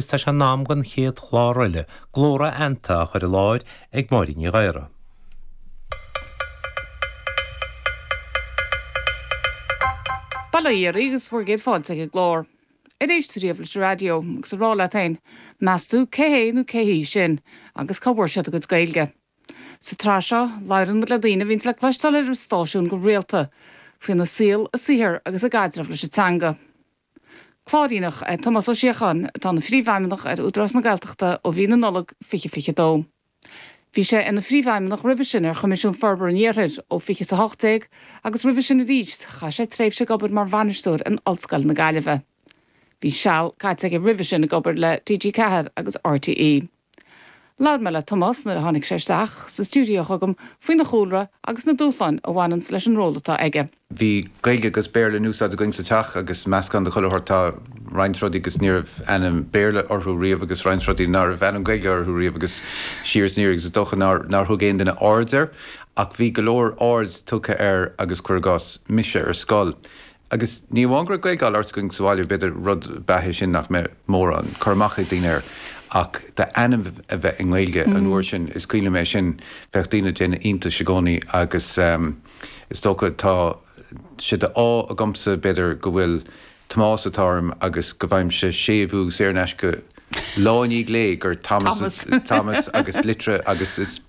agus tá sé in am don chéad chlár eile, Glór Aitheanta, á chur i láthair ag Máirín Ní Ghadhra. Bail ó Dhia oraibh agus bhur gcéad fáilte ag an gclár, ar éist tú riamh leis an raidió, agus a rá leat féin, meas tú cé hé nó cé hí sin agus cá bhfuair siad a gcuid Gaeilge? Sa tsraith seo, labhrann muid le daoine a bhíonns le cloisteáil ar an stáisiún go rialta, faoina saol, a saothar agus a gcaidreamh leis an teanga. Cláiríneach é Tomás Ó Síocháin atá ina Phríomhfheidhmeannach ar Údarás na Gaeltachta ó mhí na Nollag 2022. Bhí sé ina Phríomhfheidhmeannach roimhe sin ar Choimisiún Forbartha an Iarthair ó 2018 agus roimhe sin arís chaith sé tréimhse ag obair mar bhainisteoir in Ollscoil na Gaillimhe. Bhí seal caite aige roimhe sin ag obair le TG4 agus RTÉ. Labhair mé le Tomás nuair a tháinig sé isteach sa stiúideo chugam faoina chúlra agus na dúshláin a bhaineanns leis an ról atá aige. Bhí Gaeilge agus Béarla in úsáid againn sa teach agus meascán de chuile shórt. Tá roinnt rudaí agus ní raibh ainm Béarla orthu riamh agus roinnt rudaí ná raibh ainm Gaeilge orthu riamh agus siar is aniar agus is dócha nár thug aon duine aird air. Ach bhí go leor aird tugtha air agus, cuir i gcás, mise ar scoil. Agus ní amháin go raibh Gaeilge á labhairt againn sa bhaile, b'fhéidir rud ab ea é sin nach mbeadh mórán cur amach ag daoine air, ach d'ainm a bheith i nGaeilge an uair sin. Is cuimhin liom é sin. Bheadh daoine ag déanamh iontais i gcónaí agus is dócha tá sé de ádh agamsa, b'fhéidir, go bhfuil Tomás atá orm agus go bhfaighimse séimhiú saor in aisce go Lá i ndiaidh lae, gur Thomas Thomas agus litir agus is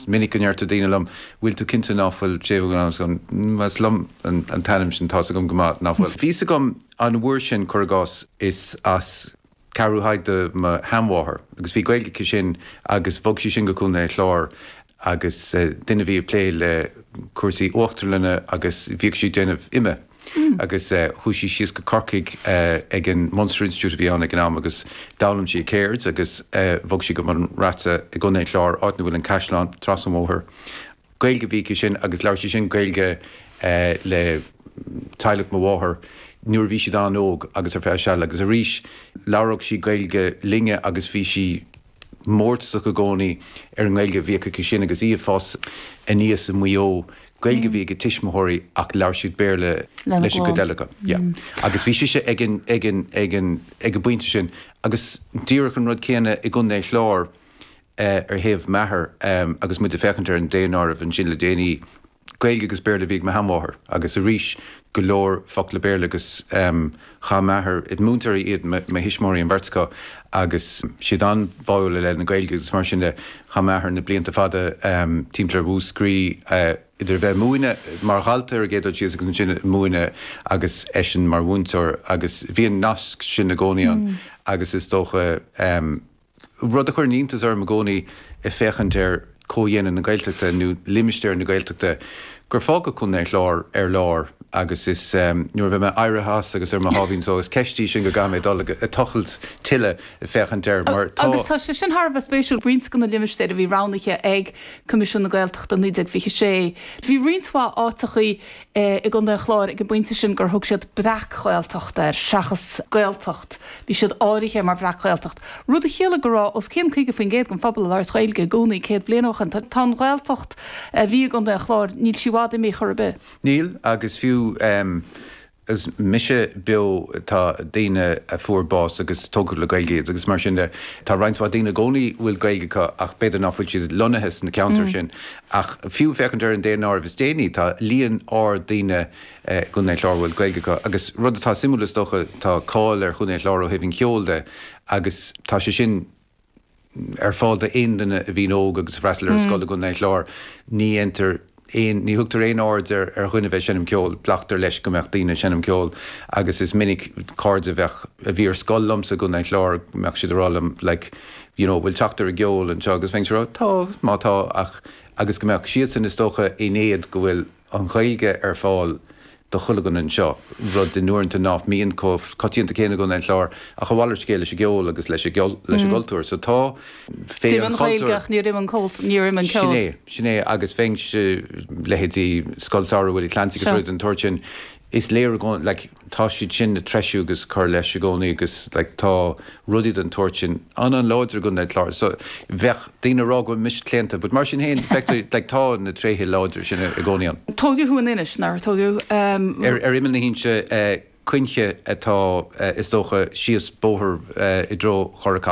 minic go ndéarfadh daoine liom, bhfuil tú cinnte ná fuil séimhiú ann agus ann? Ós liom an t-ainm sin, tá's agam go maith ná fuil. Bhí's agam an uair sin, cuir i gcás, is as Ceathrú Thaidhg do mo sheanmháthair agus bhí Gaeilg aici sin agus bhog sí sin go Contae an Chláir agus duine a bhí ag plé le cúrsaí uachtarlainne agus bhíodh sí ag déanamh ime agus chuaigh sí síos go Corcaigh ag an Munster Institute a bhí ann ag an am agus d'fhoghlaim sí a ceird agus bhog sí go Bun Raite i gContae an Chláir áit ina bhfuil an caisleán trasna an bhóthair. Gaeilge a bhí aici sin agus labhair sí sin Gaeilge le teaghlach mo mháthar nuair a bhí siad an-óg agus ar feadh seal agus arís labhródh sí Gaeilge linne agus bhí sí mórtasach i gcónaí ar an nGaeilge a bhíodh aici sin agus í ag fás aníos i Maigh Eo. Gaeilge a bhí ag a tuismitheoirí ach labhair siad Béarla leis an gcuid eile acu. Agus bhí sise ag an bpointe sin agus díreach an rud céanna i gContae an Chláir ar thaobh m'athar agus muid ag féachaint ar an daonáireamh ansin le déanaí, Gaeilge agus Béarla a bhí ag mo sheanmháthair agus arís go leor focla Béarla agus chaith m'athair, múinteoirí iad mo thuismitheoirí an bheirt acu agus siad an-bháúil i leith na Gaeilge agus mar sin de chaith m'athair na blianta fada timpeall ar Mhúscraí idir a bheith ag múineadh mar dhalta ar an gcéad dul síos agus ansin ag múineadh agus eisean mar mhúinteoir agus bhí an nasc sin i gcónaí ann agus is dócha. Rud a chuireann iontas orm i gcónaí ag féachaint ar chomhdhéanamh na Gaeltachta nó limistéar na Gaeltachta gur fágadh Contae an Chláir ar lár agus is nuair a bheidh mé éirithe as agus ar mo sháimhín só, is ceist í sin go gcaithfidh mé dul ag tochailt tuilleadh ag féachaint air mar tá. Agus tá sé sin thar a bheith spéisiúil. Roinnt de na limistéir a bhí roghnaithe ag Coimisiún na Gaeltachta i 1926, bhí roinnt mhaith áiteachaí i gContae an Chláir ag an bpointe sin gur thug siad 'Breac-Ghaeltacht' air seachas 'Gaeltacht', bhí siad áirithe mar Bhreac-Ghaeltacht, rud a chiallaigh go raibh os cionn 25% den phobal ag labhairt Ghaeilge i gcónaí céad bliain ó shin. Tá an Ghaeltacht a bhí i gContae an Chláir, níl sí i bhfad imithe ar chor ar bith. Níl, agus fiú agus mise beo tá daoine a fuair bás agus tógadh le Gaeilge iad agus mar sin de, tá roinnt mhaith daoine i gcónaí a bhfuil Gaeilge acu ach b'fhéidir nach bhfuil siad lonnaithe sna ceantair sin Ach fiú féachaint ar an daonáireamh is déanaí, tá líon ard daoine i gContae an Chláir a bhfuil Gaeilge acu. Agus rud atá suimiúil, is dócha, tá cáil ar Chontae an Chláir ó thaobh an cheoil de agus tá sé sin ar fáil d'aon duine a bhíonn óg agus a fhreastail ar an scoil i gContae an Chláir. Ní dhéantar aon, ní thugtar aon aird ar dhuine bheith ag seinm ceoil, glactar leis go mbeadh daoine ag seinm ceoil agus is minic cairde a bheadh, a bhí ar scoil liomsa i gContae an Chláir, go mbeadh siad ag rá liom, like, you know, bhfuil teacht ar an gceol anseo agus bheinnse a rá, tá, má tá ach, agus go mbeadh siadsan is dócha in éad go bhfuil an Ghaeilge ar fáil do chuile dhuine anseo, rud uaireanta nach mbíonn chomh coitianta céanna i gContae an Chláir ach a mhalairt scéil leis an gceol agus leis an gcultúr. So tá, féith an chultúir. D'imigh an Ghaeilge ach níor imigh an cultúr, níor imigh an ceol. Sin é, sin é agus bheinnse, leithéidí Scoil Samhraidh Willie Clancy agus rudaí den tsórt sin, is léir i gcónaí, like, tá siad sin le treisiú agus cur leis i gcónaí agus tá rudaí den tsórt sin an-an-láidir i gContae an Chláir so bheadh daoine a rá go mbeimis claonta but mar sin féin, feictear, tá na tréithe láidre sin i gcónaí ann. Tógadh thú in Inis, nár tógadh? Ar imeall na hInse, Cuinche atá, is dócha, síos bóthar i dtreo Chora Chaitlín.